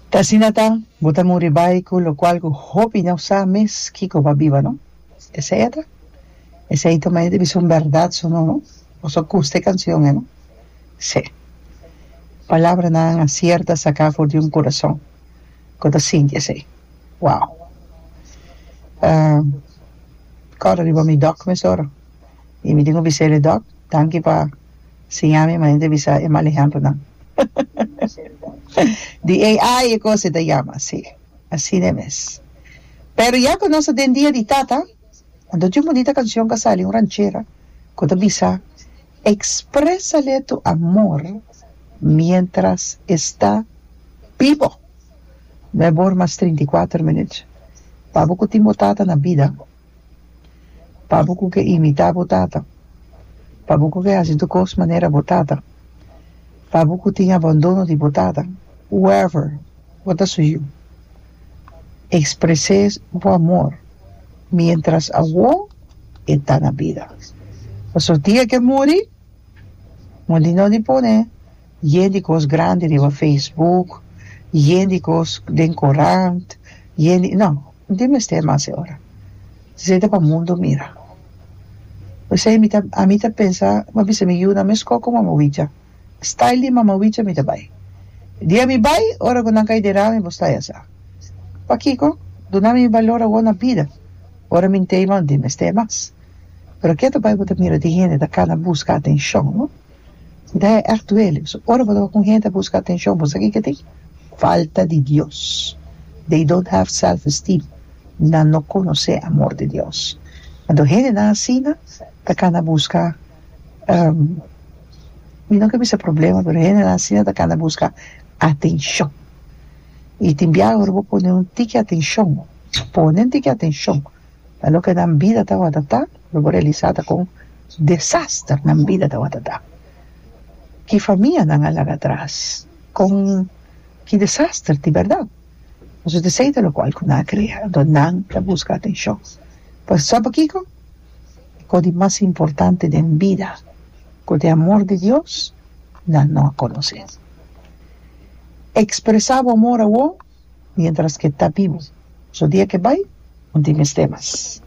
Ta asina ta, bo ta muri bai cu locual cu hopi no sa mes kico pa biba, no? Esey a ta? Esey ta maya dibi sun berdad su no, no? Boso custa e cancion, e no? Sí. Palabranan a cierta saca for di un curason cu ta sinti esey. Wow! Um, cora riba mi doc mesora y mi tin cu bisele, Doc, danki pa. Siña mi manera di bisa e mal ehempronan. Di AI e cosa e ta yama, si. Asina mes. Pero ya cu nos ta den dia di tata, anto tin un bunita cancion cu a sali, un ranchera, cu ta bisa, Expresale tu amor mientras esta bibo. No e bor mas trinta i kuater minuut. Pa bo cu tin bo tata na bida. pa bo ku ke imitá bo tata, pa bo ku ke hasi tur kos manera bo tata, pa bo ku tin abandono di bo tata. Whoever bo ta su yu, ekspres'é bo amor miéntras awor e ta na bida, pasobra dia ke e muri, moli no di pone. Yen di kos grandi riba Facebook, yen di kos den korant, yen di, no, no tin mester mas e ora. Esei ta pa mundu mira. P'esei mi ta, ami ta pensa, mi a bisa mi yu na mes kò ku Mama Wicha. Style di Mama Wicha mi ta bai. Dia mi bai, ora ku nan kai den rami bo stay asa. Pakiko? Duna mi mi balor awor na bida. Ora mi ntei bo, no tin mester mas. Pero ke ta bai bo ta mira di hende ta kana buska atenshon, no? Dij e ègt duele. So ora bo ta kun hende a buska atenshon, bo sa kiko ta hoi? Falta di Dios. They don't have self esteem. Nan no konosé amor di Dios. Anto hendenan asina ta kana buska, mi no ke bisa problema, pero hendenan asina ta kana buska atenshon. I tin biaha ora bo pone un tiki atenshon, ponen tiki atenshon na loke nan bida tabata ta, Lo bo realisa ta kon desaster nan bida tawata ta. Ki famianan a laga atras. Kon ki desaster di berdad. Nos ta disei ta lokual ku nan a krea. Anto nan ta buska atenshon. Pues sa pa kiko? E kos di mas importante den bida ku ta e amor di Dios nan no a konosé. Ekspresá bo amor awor miéntras ke ta bibu. Nos dia ke bai no tin mester mas.